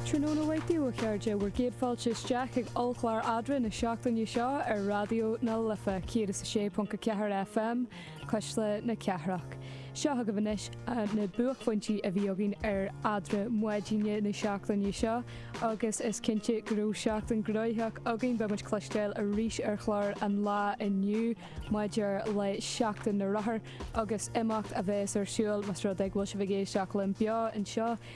Tráthnóna maith daoibh a chairde, bhur gcéad fáilte isteach chuig ollchlár eadra na seachtaine seo ar Raidió na Life 106.4 FM, Cuisle na Cathrach. Seo chugaibh anois na buaicphointí a bhí againn ar eadra maidine na seachtaine seo agus is cinnte go raibh seachtain gnóitheach againn. Beidh muid cloisteáil arís ar chlár an lae inniu maidir le Seachtain na Rothar agus imeacht a bhéas ar siúl más rud é go bhfuil sibh ag éisteacht linn beo anseo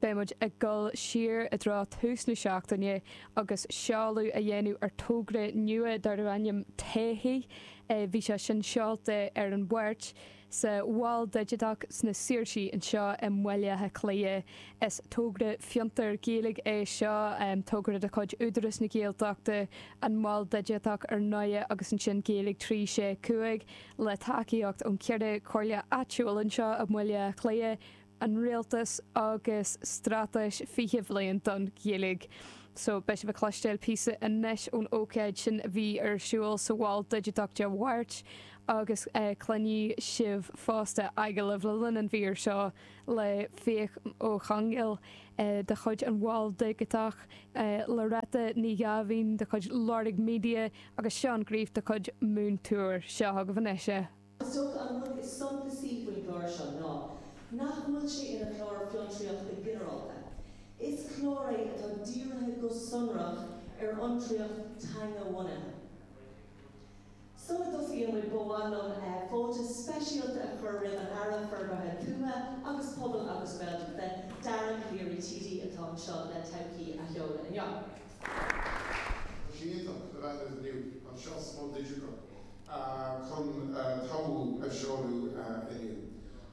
Beidh muid ag dul siar i dtreo tús na seachtaine agus seoladh a dhéanamh ar togra nua darb ainm 'Todhchaí' Bhí sé sin seolta ar an Mháirt sa Mhol Digiteach sna Saoirsí anseo i mBaile Átha Cliath. Is togra fiontair Gaeilge é seo, togra de chuid Údarás na Gaeltachta, an Mol Digiteach ar ndóigh agus ansin Gaeilge 365 le tacaíocht ón cheithre comhairle áitiúil anseo i mBaile Átha Cliath. an rialtas agus straitéis 20 bliain don Ghaeilge. So, beidh sibh ag cloisteáil píosa anois ón ócáid sin a bhí ar siúl sa Mhol Digiteach Dé Máirt agus cluinfidh sibh fosta agallamh le linn an mhír seo le Fiach Ó Conghail de chuid an Mhol Digiteach, Loretta Ní Ghabháin de chuid Lorg Media agus Seán Greif de chuid Moontour. Seo chugaibh anois. Is dócha an rud is suntasaí faoin gclár seo ná nach bhfuil sé ina chlár fiontraíochta ginearálta. Is clár é atá dírithe go sonrach ar fhiontraíocht teanga-bhunaithe. Sula dtosaíonn muid ba mhaith liom fáilte speisialta a chur roimh an Aire Forbartha Tuaithe agus Pobail agus Gaeltachta, Dara Calleary TD, atá anseo le Todhchaí a sheoladh inniu. Tá sé iontach do bheith anois inniu anseo sa Mol Digiteach chun Todhchaí a seoladh inniu.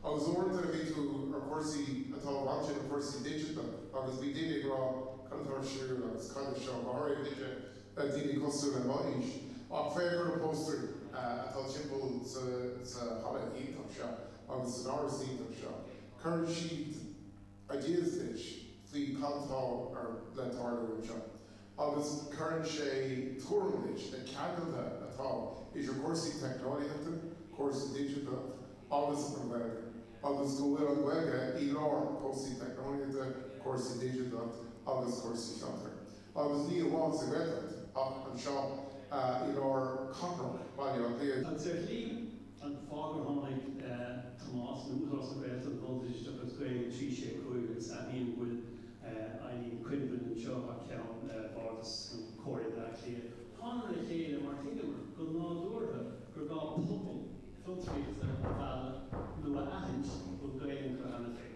Agus uaireanta a bhí tú ar chúrsaí atá i bhfad sin chúrsaí digiteacha agus bhí daoine ag rá cad atá ar siúl agus cad é seo, go háirithe duine, daoine cosúil le m'aois. Ach féach ar na póstaeir atá timpeall sa halla iontach seo agus san áras iontach seo, cuireann siad. a d'fhiafraigh faoi cad atá le tarlú anseo agus cuireann sé tuairim leis na ceangailthe atá idir cúrsaí teicneolaíochta, cúrsaí digiteacha agus an Ghaeilge agus go bhfuil an Ghaeilge i lár cúrsaí teicneolaíochta, cúrsaí digiteacha agus cúrsaí fiontair. agus ní amháin sa Ghaeltacht ach anseo i lár cathrach Bhaile Átha Cliath. Dáiríre an fáth gur tháinig Tomás, nó Údarás na Gaeltachta, an Mol Digiteach agus Gaeilge trí sé cúig agus aithním go bhfuil Eileen Quinlivan anseo thar ceann Bhardas Chomhairle Bhaile Átha Cliath, tháingamar le chéile mar thuigeamar go nádúrtha gur gá pobal fiontraíochta a mhealladh nó a aithint a bhfuil Gaeilge acu cheana féin.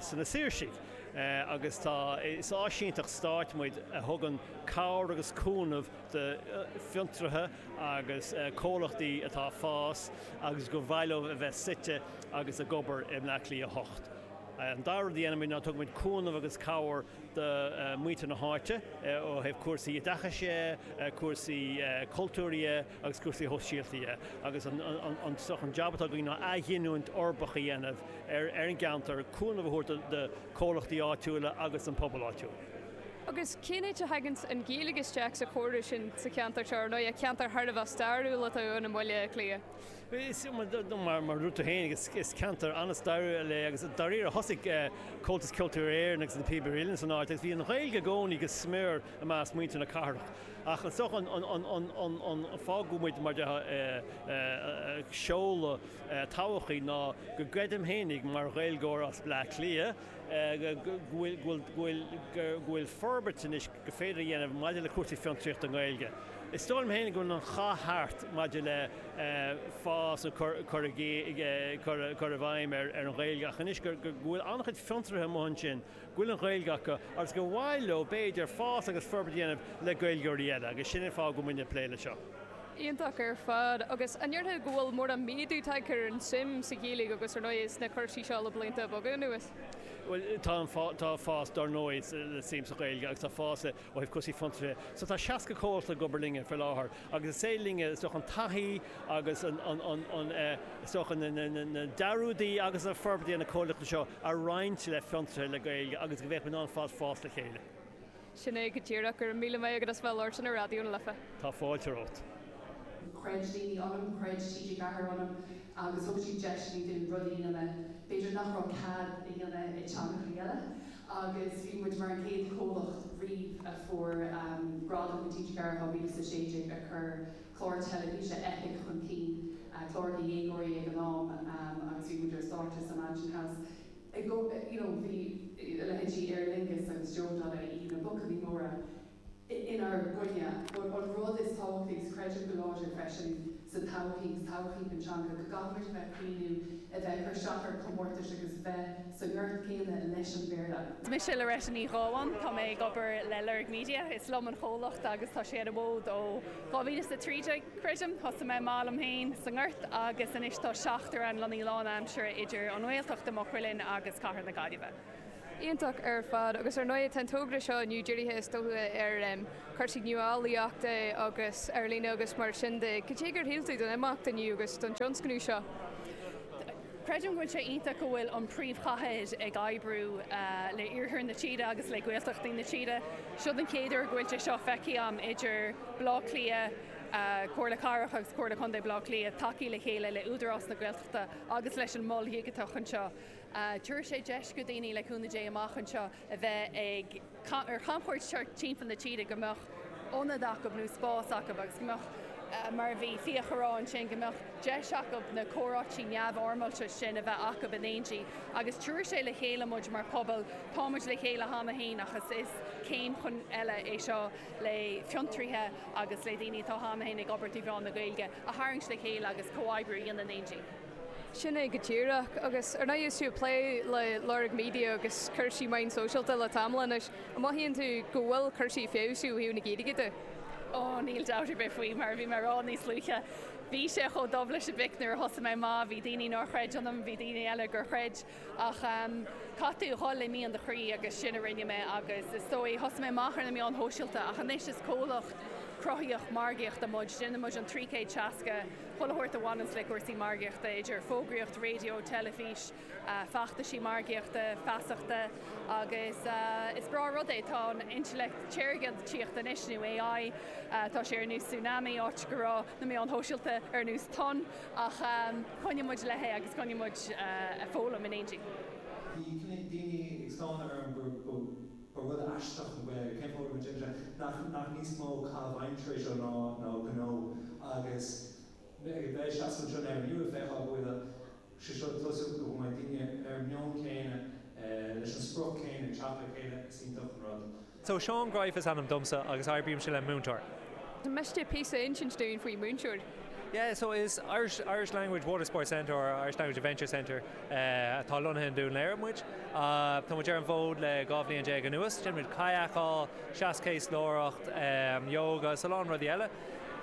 sna Saoirsigh agus tá, is áisínteacht stáit muid a thugann cabhair agus cúnamh do fhiontraithe agus comhlachtaí atá ag fás agus gur mhaith leo a bheith suite agus ag obair i mBleá Cliath 8. An dara rud a dhéanann muid ná tugann muid cúnamh agus cabhair do mhuintir na háite ó thaobh cúrsaí oideachais dhe, cúrsaí cultúir dhe, agus cúrsaí shóisialta agus an jab atá againn ná athghiniúint uirbeach a dhéanamh ar an gceantar, cúnamh a thabhairt do chomhlachtaí áitiúla agus don phobal áitiúil. Agus cén áit a thagann an Ghaeilge isteach sa chóiriú sin sa cheantar seo, ar ndóigh, ceantar thar a bheith stairiúil atá ann i mBaile Átha Cliath? Is ea, mar a dúirt tú féin, is ceantar an-stairiúil é agus dáiríre thosaigh Comhaltas Ceoltóirí Éireann agus Na Píobairí Uilleann san áit agus bhí an Ghaeilge i gcónaí go smior i measc muintir na cathrach. Ach is dócha an fáth go bhfuil muid, mar a déarfá, ag seoladh todhchaí ná go gcreidim fhéinig, mar Ghaeilgeoir as Bleá Cliath, go bhfuil forbairt anois gur féidir a dhéanamh maidir le cúrsaí fiontraíochta i nGaeilge. Is dóigh liom fhéinig go bhfuil an cath thart maidir le fás nó cur i bhfeidhm ar an Ghaeilge ach anois go bhfuil an-chuid fiontraithe amuigh ansin, go bhfuil an Ghaeilge acu agus gur mhaith leo, b'fhéidir, fás agus forbairt a dhéanamh le Gaeilgeoirí eile agus sin an fáth go bhfuil muid ag plé leis seo. Iontach ar fad. Agus an ndéarfá go bhfuil mórán méadú tagtha ar an tsuim sa Ghaeilge agus, ar ndóigh, sna cúrsaí seo le blianta beaga anuas? Bhuel, tá fás, dar ndóigh, sa tsuim sa Ghaeilge agus tá fás i. Ó thaobh cúrsaí fiontraithe, so tá 60 comhlacht ag obair linne faoi láthair agus is éard is aidhm linne, is dócha, an taithí agus an, is dócha, na dearúdaí agus an forbairt a dhéanann na comhlachtaí seo a roinnt le fiontraithe le Gaeilge agus go bhféadfadh muid ar fad fás le chéile. Sin é go díreach. Go raibh míle maith agat as bheith ag labhairt linn ar Raidió na Life. Tá fáilte romhat. Chreid daoine ionam, chreid TG4 ionam agus thug siad deiseanna dúinn rudaí a dhéanamh, b'fhéidir, nach raibh cead a dhéanamh ag teangachaí eile. agus bhí muid mar an chéad chomhlacht riamh a fuair gradam na Tithe Cathrach 2016 ar chuir clár teilifíse Eipic chun cinn, clár do dhéagóirí ag an am, agus bhí muid ar stáitse sa Mansion House i gcomhar, you know, bhí a leithéidí Aer Lingus agus Joe Donnelly, na buachaillí móra, inár gcoinne. An rud is tábhachtaí, agus creidim go láidir freisin sa todhchaí, sa todhchaí don teanga, go gcaithfimid a bheith ag cuimhniú a bheith ag cur isteach ar chomórtais agus bheith sa ngort céanna leis an Bhéarla. Mise Loretta Ní Ghabháin, tá mé ag obair le Lorg Media, is liom an chomhlacht agus tá sé ar an bhfód ó 2013, creidim. Thosaigh mé amach liom féin sa ngort agus anois tá seachtar ann, lonnaithe lánaimseartha idir an Ghaeltacht i Maigh Cuilinn agus cathair na Gaillimhe. Iontach ar fad, agus ar ndóigh tá an togra seo inniu dírithe is dócha ar chúrsaí nuálaíochta agus ar líne agus mar sin de. Cad é gur shíl tú don imeacht inniu agus don tionscnamh seo? Creidim go bhfuil sé iontach go bhfuil an príomhchathair ag oibriú le iarthar na tíre agus le Gaeltachtaí na tíre. Seo an chéad uair go bhfuil sé seo feicthe agam idir Baile Átha Cliath, Comhairle Cathrach agus Comhairle Contae Bhaile Átha Cliath ag tacú le chéile le Údarás na Gaeltachta agus leis an Mol Dhigiteach anseo. Tabharfaidh sé deis do dhaoine, le cúnamh Dé, amach anseo a bheith ag ar chamchuairt thart timpeall na tíre, go mbeadh ionad acu nó spás acu agus go mbeadh, mar a bhí Fiach a rá ansin, go mbeadh deis acu na comhráití neamhfhoirmeálta sin a bheith acu in éindí. Agus tabharfaidh sé le chéile muid mar pobal, tá muid le chéile cheana féin ach is is céim chun eile é seo le fiontraíthe agus le daoine atá cheana féin ag obair trí mheán na Gaeilge a tharraingt le chéile agus comhoibriú a dhéanamh in éindí. Sin é go díreach. Agus ar ndóigh is tú ag plé le Lorg Media agus cúrsaí meáin sóisialta le tamall anois, an mothaíonn tú go bhfuil cúrsaí ag feabhsú ó thaobh na Gaeilge de? Ó, níl dabht ar bith faoi, mar a bhí mé a rá níos luaithe, bhí sé chomh dubh leis an bpic nuair a thosaigh mé, má bhí daoine nár chreid ionam bhí daoine eile gur chreid. Ach caithfidh tú a dhul le mian do chroí agus sin a rinne mé agus is dóigh, thosaigh mé amach ar na meáin shóisialta ach anois is comhlacht cruthaíoch margaíochta muid, déanann muid an trí céad seasca chuile shórt a bhaineann le cúrsaí margaíochta, idir fógraíocht raidió, teilifís, feachtaisí margaíochta, feasachta agus is breá rud é, tá an intleacht shaorchinntíochta anois, nó AI, tá sé ar nós tsunami áit go raibh na meáin shóisialta ar nós tonn. Ach coinneoidh muid léi agus coinneoidh muid ag foghlaim in éindí. Bhí cnoic daoine ag stánadh orm go raibh rud aisteach faoin Ghaeilge. Cén fáth go raibh muid imithe? Nach níos mó caitheamh aimsire é seo ná gnó? Agus mé ag seasamh anseo inniu ag feiceáil go bhfuil sé seo ag tosú, go bhfuil daoine ar an meon céanna, leis an sprioc chéanna, ag teacht le chéile, is iontach an rud. So, Seán Greif is ainm domsa agus oibrímse le Moontour. Miste píosa a insint dúinn faoi Moontour? Yeah, so is Irish, Irish Language Water Sports Centre or Irish Language Adventure Centre atá lonnaithe i nDún Laoghaire muid. Tá muid ar an bhfód le dhá bhliain déag anuas. Déanann muid kayakáil, seaschéaslóireacht, yoga is a lán rudaí eile.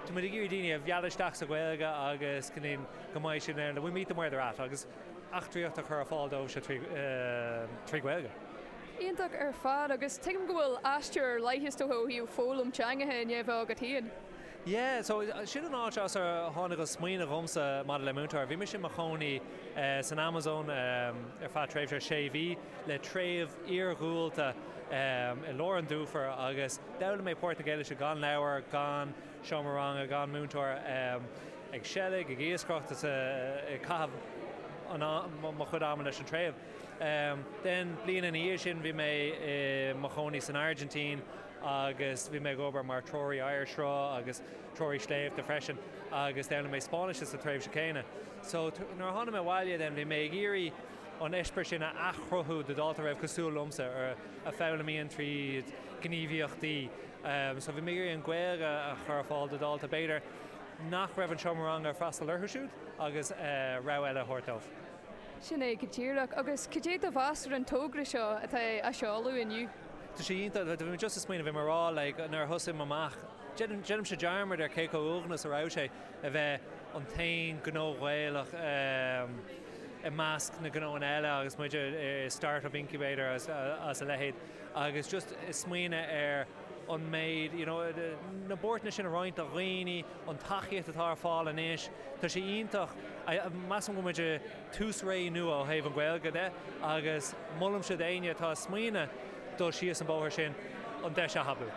Tá muid ag iarraidh daoine a mhealladh isteach sa Ghaeilge agus go ndéan, go mbeidh siad in ann, we meet them where they're at agus eachtraíocht a chur ar fáil dóibhse trí, trí Ghaeilge. Iontach ar fad, agus tuigim go bhfuil aistear ar leith is dóigh ó thaobh foghlaim teangacha i ndéibhe agat féin. Yeah, so sin an áit as ar tháinig an smaoineamh dhomsa maidir le Moontour. Bhí mise i mo chónaí san Amazon ar feadh tréimhse sé mhí le treibh iargúlta i lár an dufair agus d'fhoghlaim mé Portaingéilise gan leabhar, gan seomra ranga, gan múinteoir, ag seilg, ag iascaireacht, ag caitheamh mo chuid ama leis an treibh. Don bhliain ina dhiaidh sin bhí mé i mo chónaí san Airgintín agus bhí mé ag obair mar threoraí oighearshruth agus treoraí sléibhte freisin agus d'fhoghlaim mé Spáinnis sa tréimhse chéanna. So nuair a tháinig mé abhaile then bhí mé ag iarraidh an eispéireas sin a athchruthú do dhalta a bhí cosúil liomsa, a foghlaimíonn tríd gníomhaíochtaí. So bhí mé ag iarraidh an Ghaeilge a chur ar fáil do dhalta b'fhéidir nach raibh an seomra ranga ag freastal orthu siúd agus rogha eile a thabhairt dóibh. Sin é go díreach. Agus cad é do mheas ar an togra seo atá á seoladh inniu? Tá sé iontach. Bhí mé just ag smaoineamh, bhí mé a rá like nuair a thosaigh mé amach, déanaimse dearmad ar cé chomh uaigneach is a raibh sé a bheith an t-aon gnó Ghaelach i measc na gnóanna eile agus muid i start-up incubator agus a leithéid agus just ag smaoineamh ar an méid you know na buairteanna sin a roinnt le daoine an tacaíocht atá ar fáil anois, tá sé iontach. Measaim go bhfuil muid i tús ré nua ó thaobh an Ghaeilge de agus molaimse d'éinne atá ag smaoineamh dul síos an bóthar sin an deis a thapú.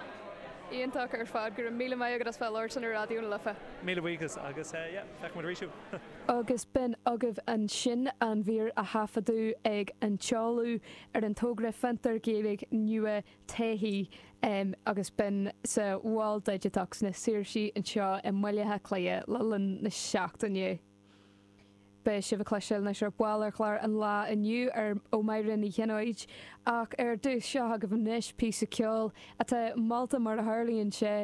Iontach ar fad. Go raibh míle maith agat as bheith labhairt ar Raidió na Life. Míle buíochas agus yeah, feicfidh muid arís thú! Agus b'in agaibh ansin an mhír a taifeadadh ag an tseoladh ar an togra Fiontar Gaeilge nua TÉIC agus b'in sa Mhol Digiteach sna Saoirsí anseo i mBaile Átha Cliath le linn na seachtaine. Beidh sibh ag cloisteáil anois ar ball ar chlár an lae inniu ó Mháire Ní Chionnaith, ach ar dtús seo agaibh anois píosa ceoil atá molta mar a tharlaíonn sé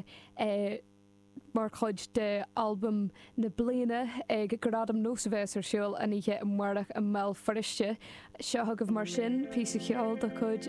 mar chuid de Albam na Bliana ag Gradaim NÓS a bheas ar siúl an oíche amárach i mBéal Feirste. Seo agaibh mar sin píosa ceoil de chuid.